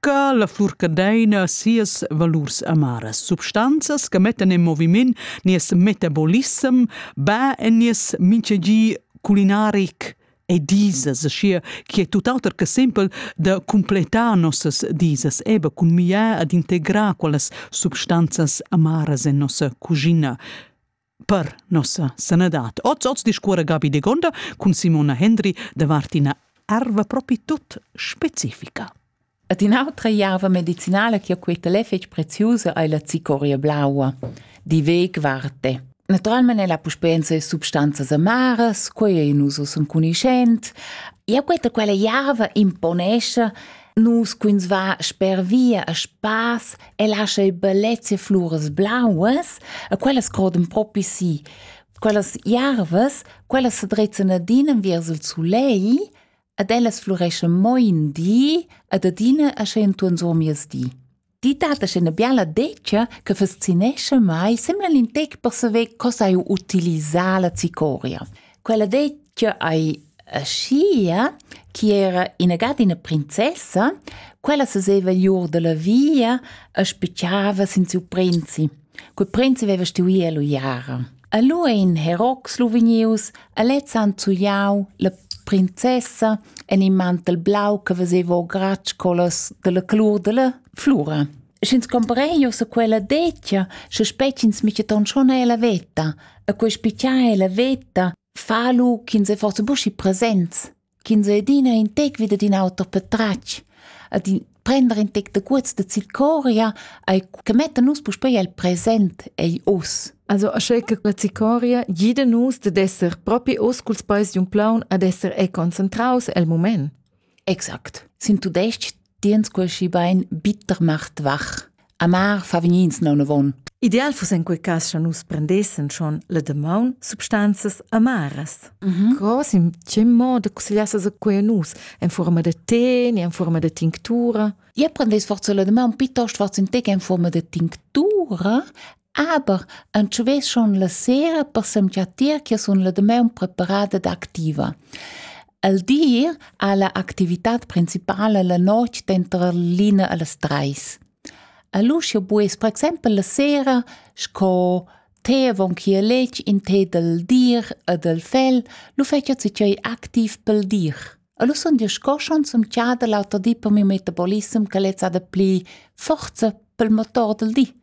ca la flurcadeina sias valurs amaras substanzas che mettan in moviment nies metabolissem ba e nies minchegi culinaric e disas, schier chi è tuttauter che simpel da completar nossas disas eba cun miar ad integrar quellas substanzas amaras en nossa cuschina. Per nossa sanadad. Oz, oz discuora Gabi Degonda cun Simona Hendry davart ina erva propi tut specifica. Et un'altra erva medicinale che ho queta l'è fetg preziosa è la cicoria blaua, di veg varte. Naturalmente la puspenza e substanzas amaras, quella in uso son conoscent, e questa quella erva imponesce nus quins va sper via a spass El ha sche bellezia fluras blauas e quellas crodan propi si. Quellas jarvas, quellas sedrezzan adina enviers il sulei ed ellas flureschan mo in di ed adina asche entuorn sur mies di. Ti dat asche ina biala decia che fascinescha mai, sembla in tec per saver co sai utilisar la cicoria. Quella dettia ei aschia chi era inagad ina princessa, quella seseva giu dalla via e spetgava sin siu prinzi. Quel prinzi veva stuì eluiara. E lu ein herocs lu vegnius e lezs han zugliau la princessa en in mantel blau che veseva o gratsch collas dalla colur dalla flura. Sch'ins cumparen jeu sa quella detga, sche spetgins mica ton schon è la veta, e quei spicchia è la veta, fa lu ch'ins è forse buschi presents, ch'ins è adina in tec vid ad in auter patratg, ad in prender in tec de guts de zicoria, ei che metta nus puspei el present ei us. Also asche che la zicoria gida nus de esser propi us culs peis d'un plaun ad esser e concentraus el moment. Exact. Sin tudestg tiens quel schibein bitter macht wach. Amar fa vegnins naunavon. Ideal fuss en quei cas cha nus prendessen schon la demaun substanzas amaras. Mm -hmm. Cos in che modo consigliasses a quei a nus? En forma de tè, en forma de tinctura? Ihr prendes forza la demaun piuttosto forza in tè che en forma de tinctura Aber entschuveschon la sera per semgiattir che sun la damaun preparada ed activa. El dir ha la activitad principala la notg denter l'ina e las treis. El uschia bues per exempel la sera sco te avon che letg in te del dir e del fel, lu fetja zicei activ pel dir. E lu sun dir sco schon zum tgada l'auter di per miu metabolissem che lezza da pli forza pel motor del di.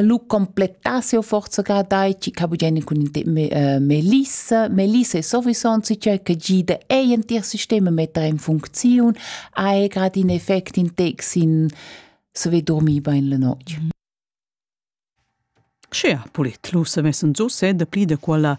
lu completar siu forzaga dai ca bugeni cun Melissa Melissa è sovissonzi cioè che gida ei in tier sistema mettere in funzione hai gerade in effect in tex in se ve dormi bein la notte Sche ha polit lu se messen so se de pli de quella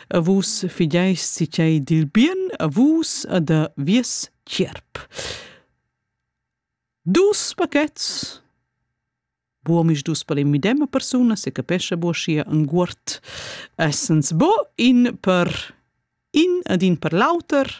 a vus fideis si tgei dil bien a vus a da vies tgierp. Dus paquets buomis dus per in midema persuna se capescha buo sia un guort essens bo in per in ad in per l'auter